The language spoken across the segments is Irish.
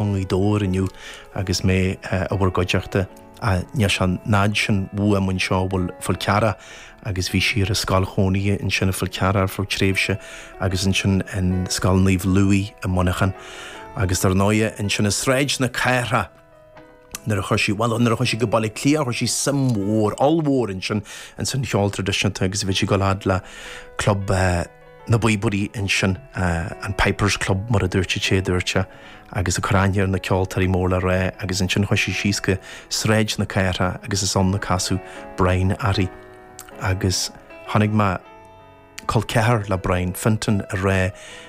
i nGaoth Dobhair inniu agus mé i bhur gcuideachta. Níl sé an fhad sin uaim anseo i bhFál Carrach agus bhí sí ar an scoil chónaithe ansin i bhFál Carrach ar feadh tréimhse agus ansin in Scoil Naomh Louis i Muineachán agus dar ndóigh ansin i Sráid na Cathrach nuair a chuaigh sí, bhuel nuair a chuaigh sí go Baile Átha Cliath chuir sí suim mhór, ollmhór ansin insan cheol traidisiúnta agus bhí sí ag gabháil fhad le Club. na bpíobairí ansin, an Pipers Club mar a dúirt sé, a dúirt sé, agus ag cur aithne ar na ceoltóirí mór le rá agus ansin chuaigh sí síos go Sráid na Cathrach agus is ann a casadh Brian airthi agus chonaic mé col ceathar le Brian Fintan ag rá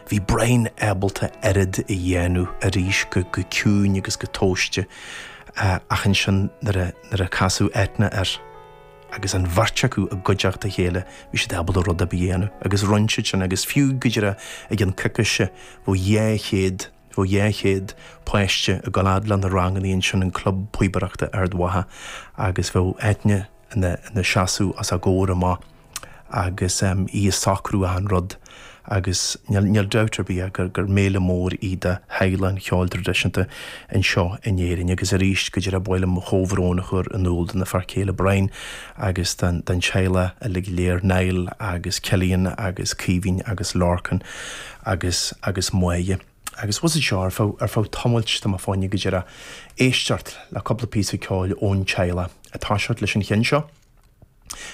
bhí Brian ábalta oiread a dhéanamh arís go ciúin agus go tomhaiste ach ansin nuair a casadh Eithne air. agus an bheirt acu i gcuideachta a chéile bhí siad ábalta rud ar bith a dhéanamh agus rinne siad sin agus fiú go díreach ag an coicise bhí dhá chéad, bhí dhá chéad páiste ag gabháil fhad le na rangannaí ansin in club píobaireachta Ard Mhacha agus bhí Eithne ina seasamh os a gcomhair amach agus í ag socrú achan rud. agus níl dabht ar bith ach gur méala mór í do theaghlach an cheoil tradisiúnta anseo in Éirinn agus arís go díreach ba mhaith liom mo chomhbhrón a chur in iúl dona fear céile Brian agus don teaghlach uilig go léir Niall agus Cillian agus Caoimhín agus Lorcán agus agus Máire agus abhus anseo ar feadh ar feadh tamailt ba mhaith linne go díreach éisteacht le cúpla píosa ceoil ón teaghlach ag toiseacht leis an cheann seo.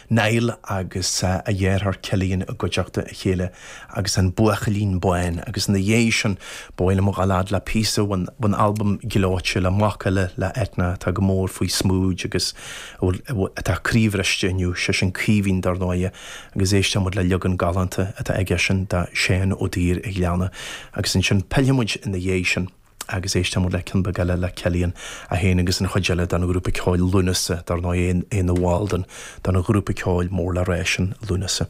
Niall agus a dheartháir Cillian i gcuideachta a chéile agus an Buachaillín Bán agus ina dhéidh sin ba mhaith liom dhul fhad le píosa ón albam gleoite le mac eile le Eithne atá go mór faoi smúid agus a bhfuil atá croíbhriste inniu sé sin Caoimhín dar ndóighe agus éisteoidh muid le leagan galánta atá aige sin de Seán Ó Duibhir a' Ghleanna agus ansin pillfidh muid ina dhéidh sin. agus éisteoidh muid le ceann beag eile le Cillian, é féin agus an chuid eile den ghrúpa ceoil Lúnasa, dar ndóigh, é ina bhall den ghrúpa ceoil mór le rá sin, Lúnasa.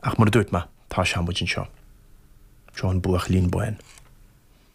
Ach mar a dúirt mé, tosóidh muid anseo. Seo an Buachaillín Bán.